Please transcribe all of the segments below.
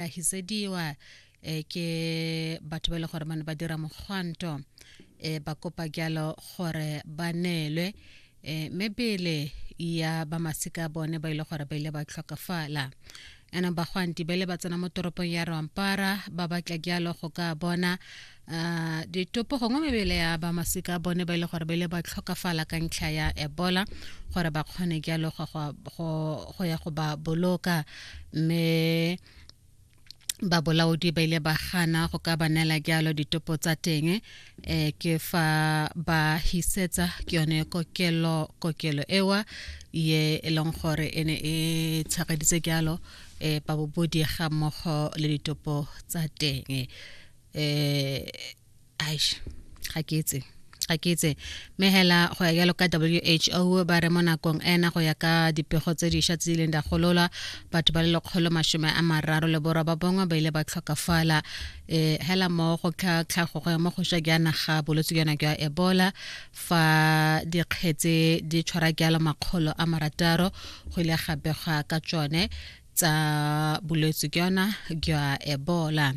ahisediwa e ke batho ba e le gore ba ne ba dira mogwanto e ba kopa jalo gore ba neelwe e mebele ya ba masika bone ba ile e gore ba ile ba tlhokafala ena bagwanti ba ile ba tsena mo toropong ya rompara ba batla jalo go ka bona Uh, ditopo gongwe mebele ya ba masika a bone ba ile e gore ba ile ba tlhokafala ka ntlha ya ebola gore ba kgone jalo go ya go ba boloka mme ba bolaodi ba ile ba gana go ka banela jalo ditopo tsa teng eh ke fa ba hisetsa ke yone kokelo kokelo ewa ye e leng gore e ne e tshegeditse jalo eh babobodi ga mmogo le ditopo tsa teng eh aish ga ke etse ga ke itse mme hela go ya jalo ka who ba re mo nakong ena go ya ka dipego tse dišwa tse di leng di golola batho ba le lekgolo masome a mararo le borwa ba bongwe ba ile ba tlhokafala um hela mo go tlhago go ya mo go swa jaana ga bolwetse jana jwa ebola fa dikgetse di tshwara jalo makgolo a marataro go ile ga begwa ka tsone tsa bolwetse ke yona jwa ebola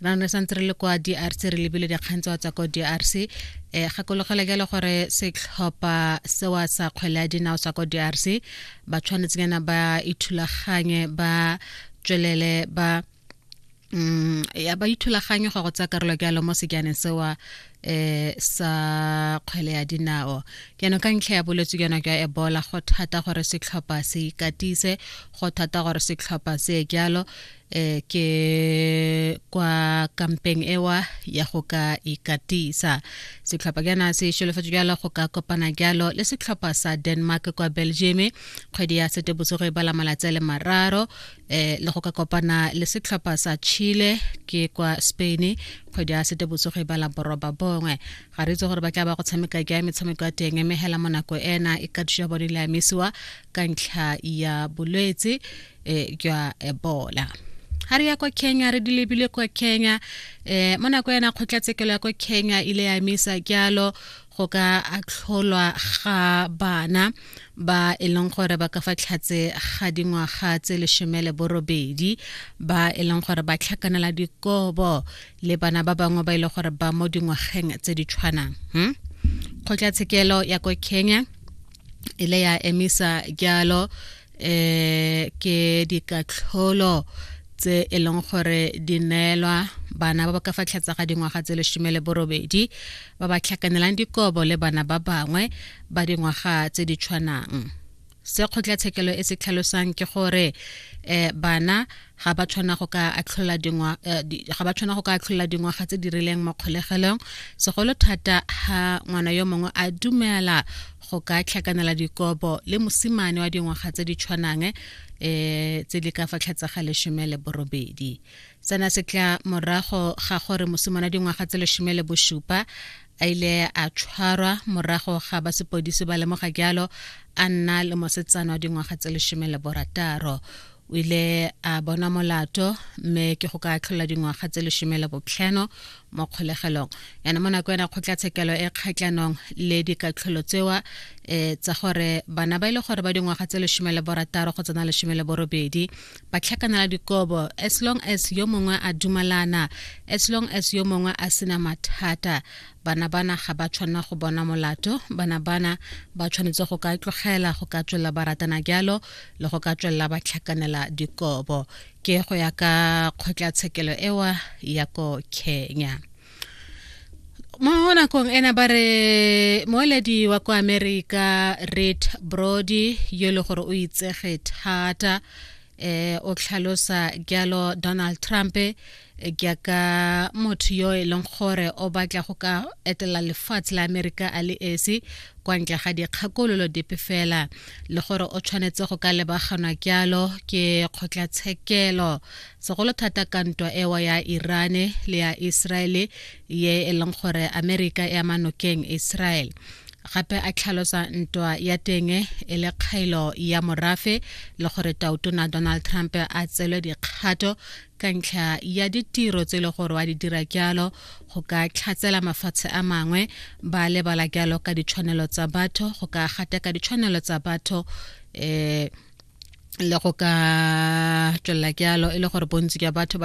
jaanong re santse re le kwa drc re lebile dikgang tsa tswa ko drc um eh, gakologela jalo gore setlhopha sewa sa kgwele ya dinao sa ko drc ba tshwanetseng yana ba ithulaganye ba tswelele ba mm ya ba ithulaganyo go go tsa karolo ke alo mo sejaneng se wa eh sa kgwele ya dinao ke no ka ntlha ya boletse ke no ke e bola go thata gore se tlhopa se ikatise go thata gore se tlhopa se ke alo eh ke kwa kampeng ewa ya go ka ikatisa se tlhopa ke na se sholo fetso ke alo go ka kopana ke alo le se tlhopa sa Denmark kwa Belgium kgwedi ya sete bosigo e bala malatsi le mararo eh le go ka kopana le setlhopha sa Chile ke kwa Spain kgwedi ya setebotsogo e bala boroba bongwe ga re itse gore ba tla ba go tshameka ke ya metshameko ya teng mme hela monako ena e ka thusa bone le amisiwa ka ntlha ya bolwetse eh, jwa ebola ga re ya kwa kenya re di lebile kwa kenya um mo nako ena kgotlatshekelo ya kwa kenya ile ya emisa jalo go ka atlholwa ga bana ba e leng gore ba ka fa tlhatse ga dingwaga tse lesome le borobedi ba e leng gore ba tlhakanela dikobo le bana ba bangwe ba e leng gore ba mo dingwageng tse di tshwanang hmm? kgotlatshekelo ya ko kenya e le ya emisa jalo eh ke dikatlholo tse e leng gore di neelwa bana ba ba ka fa tlhatsa ga dingwaga tse lesome le borobedi ba ba tlhakanelang dikobo le bana ba bangwe ba dingwaga tse di tshwanang se kgotlatshekelo e se tlhalosang ke gore um bana ga ba tshwana go ka atlhola dingwa eh, ga ba tshwana go ka atlhola dingwaga tse di rileng mo kgolegelong segolo thata ha ngwana yo mongwe a dumela go ka tlhakanela dikobo le mosimane wa dingwaga tse di tshwanang eh tse di ka fa tlhatsa ga leshome le borobedi sena se tla morago ga gore mosimane wa dingwaga tse leshome le bosupa a ile a tshwarwa morago ga ba sepodisi ba lemoga jalo a nna le mosetsana wa dingwaga tse lesome le borataro o ile a bona molato mme ke go ka tlhola dingwaga tse lesome le botlhano mo kgolegelong yana mo nako ena kgotlatshekelo e kgatlhanong le dikatlholo tsewa um tsa gore bana ba e le gore ba dingwaga tse lesome le borataro go tsena lesome le borobedi ba tlhakanela dikobo as long as yo mongwe a dumalana as long as yo mongwe a sena mathata bana bana ga ba tshwanela go bona molato bana bana ba tshwanetse go ka tlogela go ka tswelela ba ratana jalo le go ka tswelela ba tlhakanela dikobo ke go ya ka kgotlatshekelo ewa ya ko kenya mo nakong ena ba re moeledi wa kwa america red brody yo e le gore o itsege thata eh o tlhalosa jalo donald trump eh, jaaka motho yo e leng gore o batla go ka etela lefatshe la amerika a le esi kwa ntle ga dikgakololo dipe fela le gore o tshwanetse go ka lebaganwa jalo ke kgotlatshekelo segolo thata ka ntwa ewa ya irane le ya iseraele ye e leng gore amerika e ama nokeng iseraele gape a tlhalosa ntwa ya teng e le kgaelo ya morafe le gore tautona donald trump a tselwe dikgato ka ntlha ya ditiro tse e le gore wa di dira jalo go ka tlhatsela mafatshe a mangwe ba lebala jalo ka ditshwanelo tsa batho go ka gateka ditshwanelo tsa batho um le go ka tswelela ke alo e le gore bontsi jwa batho ba